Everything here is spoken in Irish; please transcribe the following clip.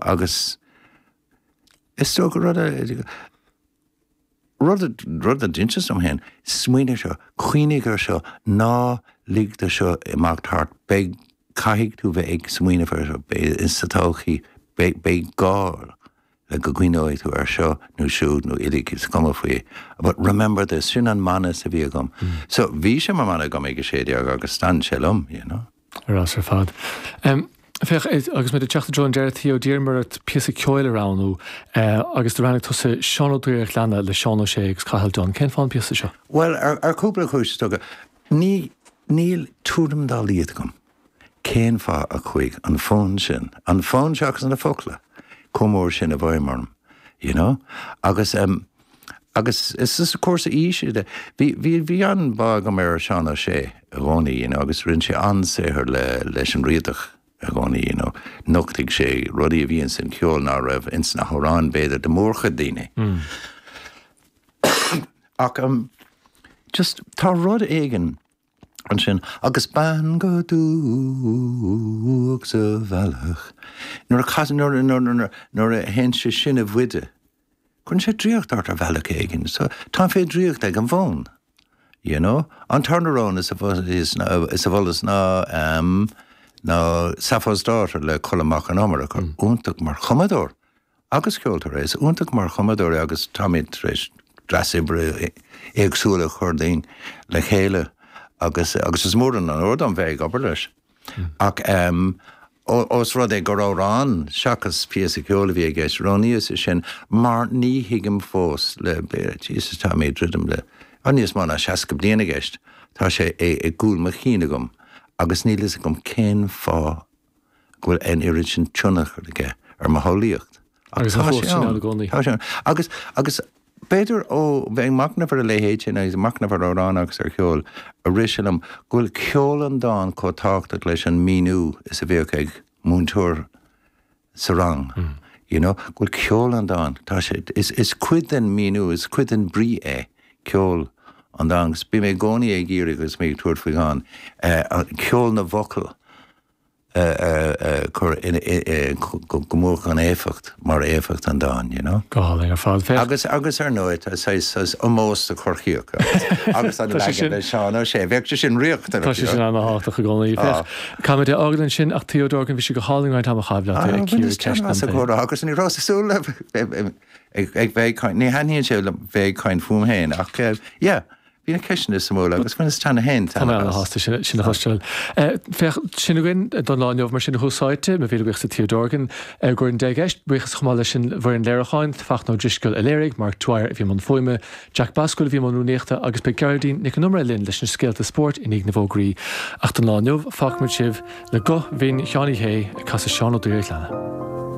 Agus is dócha rud a, rud, rud a d'inseas liom féin, smaoinigh ar seo, cuimhnigh ar seo, ná lig dó seo imeacht thart, beidh, caithfidh tú bheith ag smaoineamh ar seo, beidh sa todhchaí, beidh, beidh gá le go gcuimhneoidh tú ar seo nó siúd nó uilig is cuma faoi, but remember this, sin an mana a bhí agam. So bhí sé mar mhana agam ag a sé déag agus d'fhan sé liom, you know. Ar fheabhas ar fad. Féach, agus muid ag teacht i dtreo an deireadh, Theo, d'iarr mé ort píosa ceoil a roghnú agus do roghnaigh tusa Seán Ó Duibhir a' Ghleanna le Seán Ó Sé agus Cathal Dunne. Cén fáth an píosa seo? Bhuel, ar chúpla cúis, is dócha. Níl tuairim dá laghad agam cén fáth a chuaigh an fonn sin, an fonn seo agus na focla, chomh mór sin i bhfeidhm orm, you know? Agus. agus is arís is cúrsaí aoise, bhí an-bhá agam ar Seán Ó Sé i gcónaí, you know, agus rinne sé an-saothar leis an Riadach i gcónaí, you know, nochtaigh sé rudaí a bhí ins an cheol ná raibh ins na hamhráin, b'fhéidir, do mhórchuid daoine. Ach just, tá rud éigin ansin, agus bean go dubhach sa bhealach, nuair a chasann, nuair a théann sé sin i bhfuide, Cuireann sé draíocht ort ar bhealach éigin, so táim fé dhraíocht ag an bhfonn, you know. An tarna rogha a mholas ná ehm ná Sappho's Daughter le Colm Mac Con Iomaire, fear iontach mar chumadóir agus ceoltóir é, is iontach mar chumadóir é agus táimid tar éis dreas oibre éagsúil a chur le chéile agus agus is mór an onóir dom bheith ag obair leis. Ach ós rud é gur amhrán seachas píosa ceoil a bhí i gceist, roghnaíos é sin mar ní thuigim fós le, Jesus tá mé ag druidim le, tá níos mó ná seasca bliain i gceist, tá sé i gcúl mo chinn agam agus níl fhios agam cén fáth go bhfuil an oiread sin tionchar aige ar mo shamhlaíocht. Agus an chumhacht sin ann i gcónaí. Tá sé ann. Agus, agus b'fhéidir ó bheith ag machnamh ar a leithéid sin agus ag machnamh ar amhráin agus ar cheol, a rith sé liom go bhfuil ceol an dáin chomh tábhachtach leis an míniú is a bhíodh ag múinteoir sa rang, you know, go bhfuil ceol an dáin, tá sé, is, is cuid den míniú, is cuid den bhrí é ceol an dáin agus bím i gcónaí ag iarraidh agus mé ag tabhairt faoi dhán, eh, ceol na bhfocal. a chur go mór chun éifeacht mar éifeacht an dáin, you know. Go hálainn ar fad, féach. Agus, agus ar ndóigh, tá saghas ómós do Chorcaíoch agus an leagan le Seán Ó Sé, bheadh sé sin riachtanach. Tá sé sin ana-thábhachtach i gcónaí, féach. Caithfimid é a fhágáil ansin ach Theo Dorgan, bhí sé go hálainn roinnt ama a chaitheamh leat ag cíoradh ceist an phobail. Bhuel, is deas an comhrá seo agus ní rabhas ag súil le bheith ag caint, ní thaitníonn sé liom bheith ag caint fúm féin ach yeah. Bhí na ceisteanna suimiúla agus bhaineas taitneamh as. Tá mé ana shásta sin a chloisteáil. Féach, sin a bhfuil againn don lá inniu mar sin a chairde, mo mhíle buíochas do Theo Dorgan ar an gcuairt indé go deimhin. Buíochas chomh maith leis an bhfoireann léiriúcháin, Fachtna Ó Drisceoil a léirigh, Mark Dwyer a bhí i mbun fuaime, Jack Basquel a bhí i mbun rúnaíochta agus beidh Gearóidín Nic an Iomaire linn leis na scéalta spóirt i ndiaidh na bhfógraí. Ach don lá inniu, fágfaimid sibh le guth bhinn Sheáin Uí Shé ag casadh Seán Ó Duibhir a ghleanna.